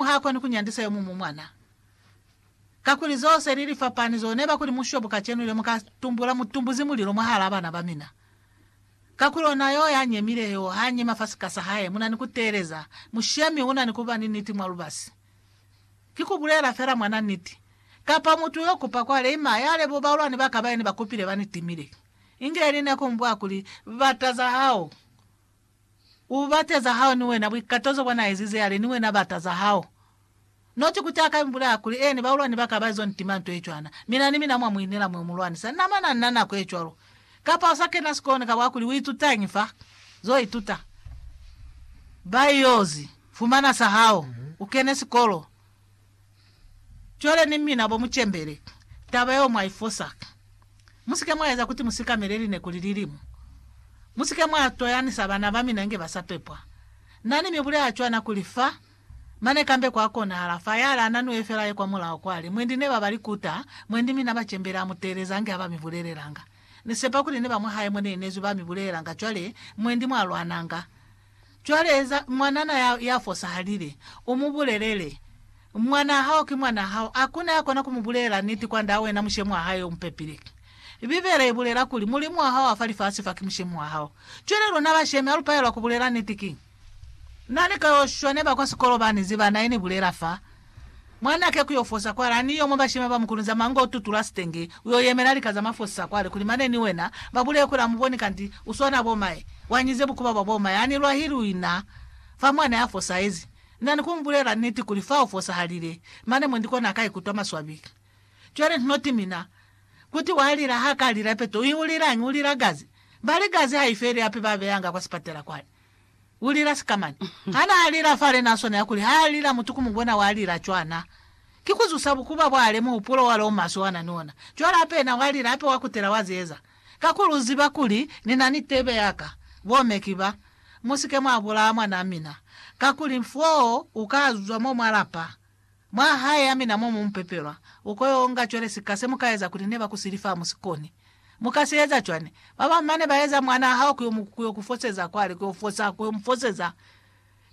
Mulimu ha koni ku nyandisa yo muñwi mwana, kakuli zo se li li fapani zo ne ba kuli mushobo kacenu le mu ka tumbula mutumbuzi mulilo mwahalaa bana ba mina. Kakuli ona yo ya nyemile yo ha nyema fa sika sa hae, mu na ni ku teeleza, mushemi u na ni ku ba ni niti mwa lubasi. Ki ku bulela fela mwana niti, kapa mutu yo kupa kwa leima ya lebo baulwani ba ka ba ene ba kupile ba ni timile. Inge li ne ku mbwa kuli, Bata za hao. U bate za hao ni wena, buikato zo bwa na ezize, yale, ni wena bata za hao. Noti kuti aka imbulea kuli, Eeni, baulwani ba ka ba izo ntima nto ye cwana, mi na ni mina mwa mu inela mwe mu lwanisa. Na mana nna nako ye cwalo. Kapa u sa kena sikolo ni ka bwa kuli, U itutañi fa? Zo ituta. Ba yozi fumana sa hao. U kene sikolo. Cwale ni mina bo mucembele taba yeo mwa ifosa. Musike mwa eza kuti musikamele lineku lililimu. Musike mwa toyanisa bana ba mina inge ba sa pepwa. Nani mi bulela cwana kuli fa, mane kambe kwa konahala fa yale ananue fela ye kwa mulaho kwali, mwendi ne ba ba likuta, mwendi mina bacembele a muteeleza ange aba mi bulelelanga. Ni sepa kuli ni ba mwahae mo ne inezwi ba mi bulelelanga cwale, mwendi mwa lwananga. Cwale eza mwanana ya, ya fosahalile, u mu bulelele, Mwanaa hao ki mwanaa hao. Hakuna ya kona ku mu bulelela niti kwandaa wena mushemi wa hae yo mu pepile. Bibele i bulela kuli, Mulimu wa hao wa fa lifasi fa ki mushemi wa hao. Cwale luna bashemi ha lu palelwa ku bulela niti, ki Na ni ka yo shwa ne ba kwa sikolo ba ni ziba, na i ni bulela fa. Mwanake ku yo fosa kwale, a ni yo mwa bashima ba mukulunza manga u tutula sitenge, u yo yemela lika za mafosisa kwale, kuli mane ni wena ba buleye kuli a mu boni kanti u swana bo maye. Wa nyize bukuba bwa bo maye, a ni lwahili u ina fa mwa ne a fosahezi. Na ni ku mu bulela niti kuli fa u fosahalile, mane mwendi kona a ka ikutwa maswabi. Cwale hnoti mina, kuti wa lila ha ka lila ipeto, u i ulilañi? U lila gazi. Bali gazi ha i feli hape ba beyanga kwa sipatela kwale. U lila sika mani. Ha naa lila fa lena swana ya kuli ha a lila mutu ku mu bona wa lila cwana. Ki ku zusa bukuba bwa le muhupulo wa le o maswe wa na ni ona. Cwale hape yena wa lila hape wa kutela wa ze eza. Kakuli u ziba kuli ni na ni tebe ya ka. Bo me ki ba. Mu si ke mwa bulaha mwanaa mina. Kakuli foo u ka zwa mo mwa lapa. Mwa hae ya mina mo mu mu pepelwa, u ko yo nga cwale sika se mu ka eza kuli ne ba ku sili fa mu si koni. Mu ka si eza cwani? Ba bañwi ba ne ba eza mwanaa hao ku yo mu ku yo ku foseza kwale, ku yo fosa, ku yo mu foseza.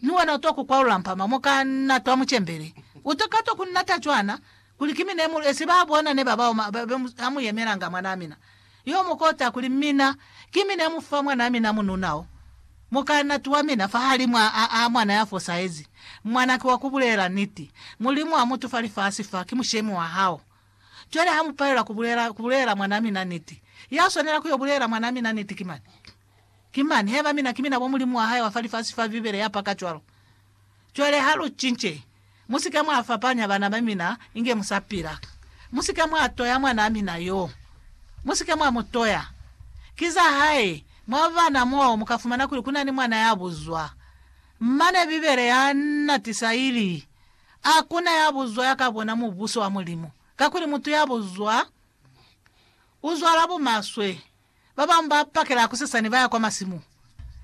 Mi wena u to ku kwalula mpama mo ka natwa mucembeli. U to ka to ku nata cwana, kuli ki mi ne mu lu esi ba bona ne ba bao ma, ba, ba, ha mu yemelanga mwanaa mina. Yo mu kota kuli, Mina, ki mi ne mu fa mwanaa mina mununa o mukanati wa mina fahalimw'a a a mwana ya fosahezi. Mwana ki wa ku bulela niti. Mulimu a mutu fa lifasi fa ki mushemi wa hao. Cwale ha mu palelwa ku bulela, ku bulela mwanaa mina niti, ya swanela ku yo bulela mwanaa mina niti ki mani? Ki mani? Heba mina ki mina bo Mulimu wa hae wa fa lifasi fa, Bibele ya paka cwalo. Cwale ha lu cince, Mu si ka mwa fapanya bana ba mina inge mu sa pila. Mu si ka mwa toya mwanaa mina yo. Mu si ka mwa mu toya. Ki za hae. Mwa bana moo, mu ka fumana kuli ku na ni mwana ya buzwa. Mane Bibele ya natisa ili, Ha ku na ya buzwa ya ka bona Mubuso wa Mulimu, kakuli mutu ya buzwa u zwala bumaswe. Babañwi ba pakela hakusesani baya kwa masimu,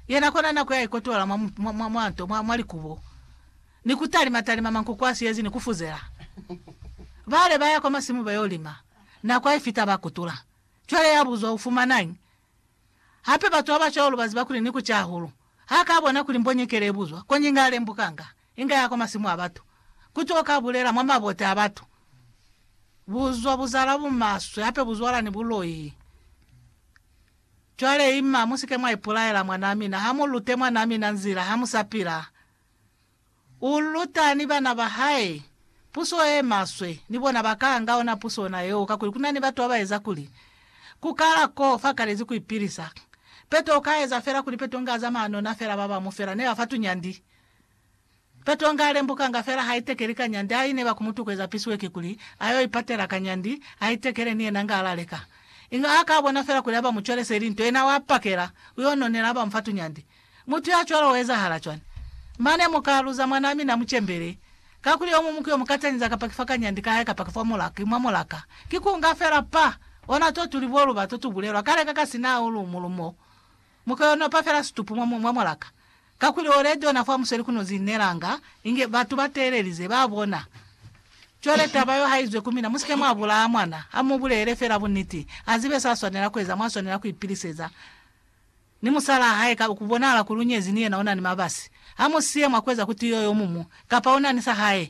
yena kona na kuya ikotola mwa, mwa, mwa, mwa nto, mwa, mwa likubo, ni kutalima talima mankuku a siyezi ni kufuzela. Bale baya kwa masimu bayo lima, nako haifita ba kutula. Cwale ya buzwa, Ufumanañi? Hape batu baba cwalo baziba kuli ni kuca hahulu. Ha ka bona kuli mbonyekele ibuzwa, koñi nga lembukanga. Inga ya kwa masimu a batu. Ku tuka ka bulela mwa mabote a batu. Buzwa buzala bumaswe, hape buzwala ni buloi. Cwale, ima, mu si ke mwa ipulaela, mwanaa mina. Ha mu lute mwanaa mina nzila, ha mu sa pila. U luta ni bana ba hae puso ye maswe, ni bona ba ka anga ona puso ona yeo, kakuli ku na ni batu ba ba eza kuli, Ku kala ko, fa kalezi ku ipilisa. Peto u ka eza fela kuli Peto nga zamana ona fela, ba bamu fela ne ba fa tunyandi. Katonga alembukanga fela haitekeli kanyandi aine bakumutukweza piswe kikuli ayo ipatela kanyandi aitekele ni yena ngala leka. Inga haka bona fela kuli aba mucwelese ili nto yena wa pakela uyo nonela aba mufa tunyandi. Mutu ya cwalo uezahala cwani? Mane muka luza mwanaa mina mucembele. Kakuli omu muki omukatanyiza kapa kifa kanyandi kahae kapa kifa mulaka ki mwa mulaka. Kikunga fela pa! Ona to tuli boluba to tubulelwa kale ka ka sina aulu mulumo. Mu ka yo nopa fela situpu mwa, mwa mwalaka. Kakuli ole jona fa museli ku no zinelanga inge batu ba teelelize, ba bona. Cwale taba yo ha izwe ku mina, musike mwa bulaya mwana, ha mu bulele fela buniti, a zibe sa swanela ku eza, mwa swanela ku ipiliseza ni musalaa hae, ka, ku bonahala kuli u nyezi ni yena, u na ni mabasi. Ha mu siye mwa ku eza kuti yo yo mumu, kapa u na ni sa hae.